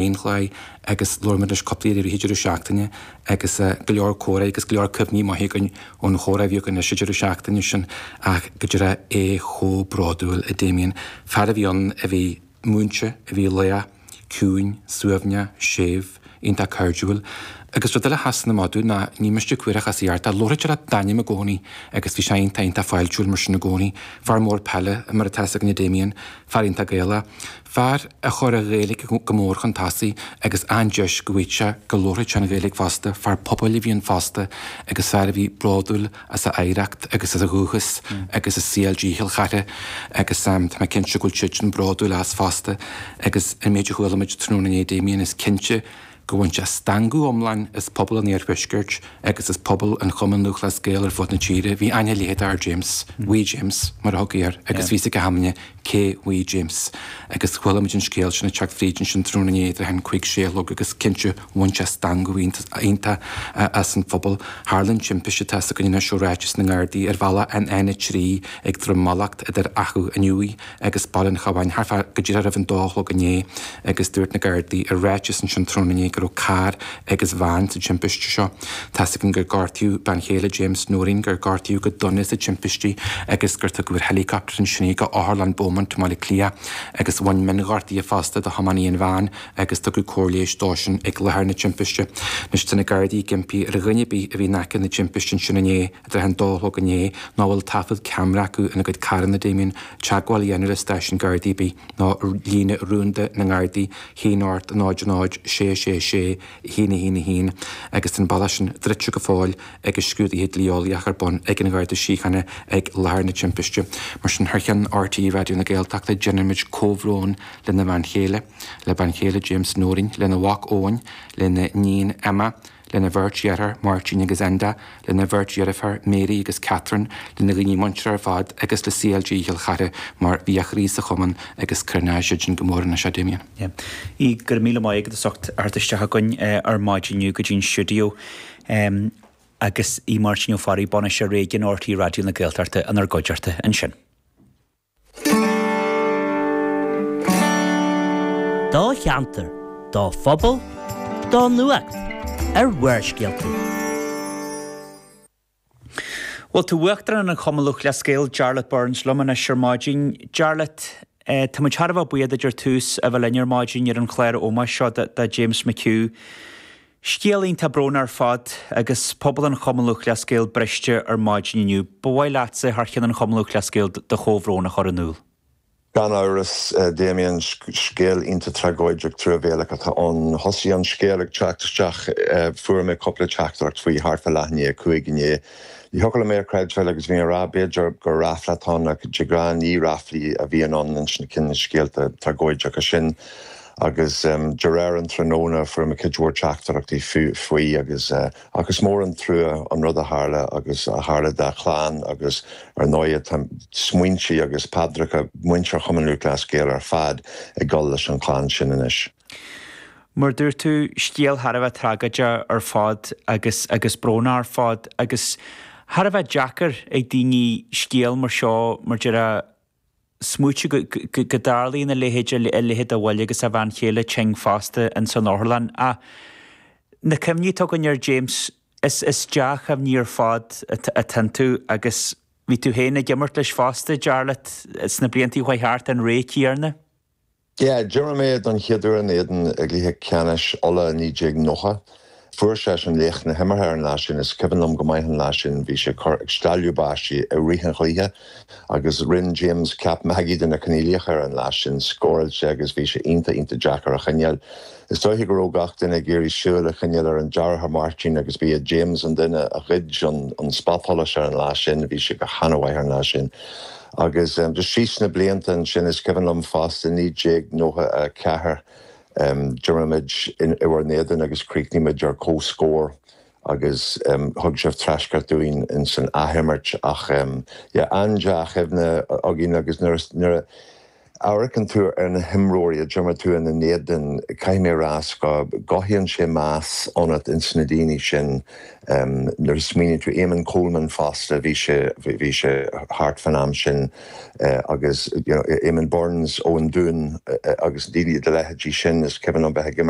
aon dhlaoi agus labhair muid leis cúpla uair i rith an deireadh seachtaine agus go leor comhrá agus go leor cuimhní maithe againn ón chomhrá a bhí againn leis an deireadh seachtaine sin ach go díreach é chomh bródúil a Damien. Fear a bhí ann a bhí múinte, a bhí lách, ciúin, suaimhneach, séimh, iontach cairdiúil. Agus rud eile a sheasann amach dúinn ná ní miste cuíosach as a dheartá. Labhraítear leat d'ainm i gcónaí agus bhí sé iontach, iontach fáiltiúil mar sin i gcónaí. Fear mór peile mar atá fhios againn a Damien. Fear iontach Gaelach. Fear a chuir an Ghaeilge go mór chun tosaigh agus aon deis go bhfaigheadh sé go labharfadh sé an Ghaeilge fosta. Fear pobail a bhí ann fosta agus fear a bhí bródúil as a oidhreacht agus as a dhúchas agus as CLG Chill Chartha agus tá mé cinnte go bhfuil siadsan bródúil as fosta agus an méid a chuala muid tráthnóna inné Damien is cinnte go bhain sé stangadh iomlán as pobal an iarthuaiscirt agus as pobal an Chumainn Lúthchleas Gael ar fud na tíre. Bhí aithne leitheadach ar James, Wee James, mar a thugtaí air, agus bhí fhios ag achan duine cé Wee James, agus chuala muid an scéal sin ag teacht fríd ansin tráthnóna inné idir an cúig sé a chlog agus cinnte bhain sé stangadh iontach as an phobal. Tharla an timpiste tá fhios againn anois ó ráiteas na nGardaí ar bhealach an N3 ag Droim Mallacht idir Achadh an Iúir agus Baile an Chabháin thart fá go díreach roimh an dó a chlog inné agus dúirt na Gardaí i ráiteas ansin tráthnóna inné go raibh carr agus veain sa timpiste seo. Tá's againn gur gortaíodh bean chéile James Noreen, gur gortaíodh go dona sa timpiste agus gur tugadh ar helicopter ansin í go Otharlann Beaumont i mBaile Átha Cliath agus bhain mionghortuithe fosta do thiománaí an veain agus tugadh cóir leighis dósan ag láthair na timpiste. Anois tá na Gardaí ag impí ar dhuine ar bith a bhí in aice na timpiste ansin inné, i dtreo an dó a chlog inné nó a bhfuil taifead ceamara acu ina gcuid carranna, Damien, teagmháil a dhéanamh le stáisiún Gardaí ar bith, nó líne rúnda na nGardaí, 1 8 0 0 6 6 6 1 1 1, agus tá an bealach sin druidte go fóill agus scrúdaithe dlí-eolaíocha ar bun ag an Gharda Síochána ag láthair na timpiste. Mar sin, thar cheann RTÉ Raidió na Gaeltachta, déanaimid comhbhrón lena bhean chéile, le bean chéile James Nóirín, lena mhac Eoin, lena níon Emma, lena bheirt dheartháir Máirtín agus Enda, lena bheirt dheirféar Mary agus Catherine, lena dhaoine muinteartha ar fad agus le CLG Chill Chartha mar bhí a chroí sa chumann agus cronóidh siadsan go mór anois é a Damien. Aodh, go raibh míle maith agat as ucht a theacht isteach chugainn ar maidin inniu go dtí'n stiúideo agus Aodh Máirtín Ó Fearraigh, Bainisteoir Réigiúin RTÉ Raidió na Gaeltachta, inár gcuideachta ansin. do cheantar, do phobal, do nuacht, ar Bharrscéalta. Bhuel, tá Uachtarán an Chumainn Lúthchleas Gael, Jarlath Burns, liom anois ar maidin. Jarlath, tá muid thar a bheith buíoch duit ar dtús a bheith linn ar maidin ar an chlár ómóis seo do James McHugh. Scéal iontach bróin ar fad agus pobal an Chumann Lúthchleas Gael briste ar maidin inniu. Ba mhaith leatsa, thar cheann an Chumann Lúthchleas Gael, do chomhbhrón a chur in iúl. Gan amhras, Damien, scéal iontach tragóideach truamhéalach atá ann. Thosaigh an scéal ag teacht isteach, fuair mé cúpla teachtaireacht faoi thart fá leath i ndiaidh a cúig inné. Ní thiocfadh liom é a chreidbheáil agus bhí mé ag rá b'fhéidir gur rafla atá ann ach de ghnáth ní raflaí a bhíonn ann insna cineál scéalta tragóideacha sin. agus de réir an tráthnóna fuair mé cuid mhór teachtaireachtaí faoi agus ach is mór an trua an rud a tharla agus a tharla dá chlann agus ar ndóighe tá smaointe agus paidreacha muintir Chumann Lúthchleas Gael ar fad ag dul leis an chlann sin anois. Mar a dúirt tú, scéal thar a bheith tragóideach ar fad agus agus brónach ar fad agus thar a bheith deacair ag daoine scéal mar seo mar a déarfá smaoitiú go dtarlaíonn a leithéid, a leithéid de bhuille agus a bhean chéile tinn fosta ins an otharlann. Ach na cuimhní atá againn ar James, is dea-chuimhní ar fad atá iontu agus bhí tú féin ag imirt leis fosta, Jarlath, sna bliantaí a chuaigh thart, an ré céanna. Yeah, d'imir mé don chéaduair ina éadan i gcluiche ceannais Uladh 1990. Fuair seisean an laoch na himeartha ar an lá sin is cuimhin liom go maith an lá sin bhí sé ag cur ag stealladh báistí i rith an chluiche agus rinn James ceap magaidh de na coinníollacha ar an lá sin scóráil sé agus bhí sé ionta ionta deacair a choinneáil Is dóiche go raibh gach duine ag iarraidh súil a choinneáil ar an deartháir Martin agus ba é James an duine a ghoid an spotsolas ar an lá sin, bhí sé go hana-mhaith ar an lá sin. Agus just síos na blianta ansin is cuimhin liom fosta 1994 d'imir muid in bhur n-éadan agus chríochnaigh muid ar comhscór agus thug sibh treascairt dúinn insan athimirt ach yeah an-dea-chuimhne againn agus nuair a, Amharcann tú ar na himreoirí a d'imir tú ina n-éadan, caithfidh mé a rá, is go gcothaíonn sé meas ionat ins na daoine sin. Nuair a smaoiníonn tú, Éamonn Coleman fosta, bhí sé, bhí sé thart fán am sin agus, you know, Éamonn Burns ón Dún agus daoine de leithéidí sin is cuimhin liom bheith ag imirt.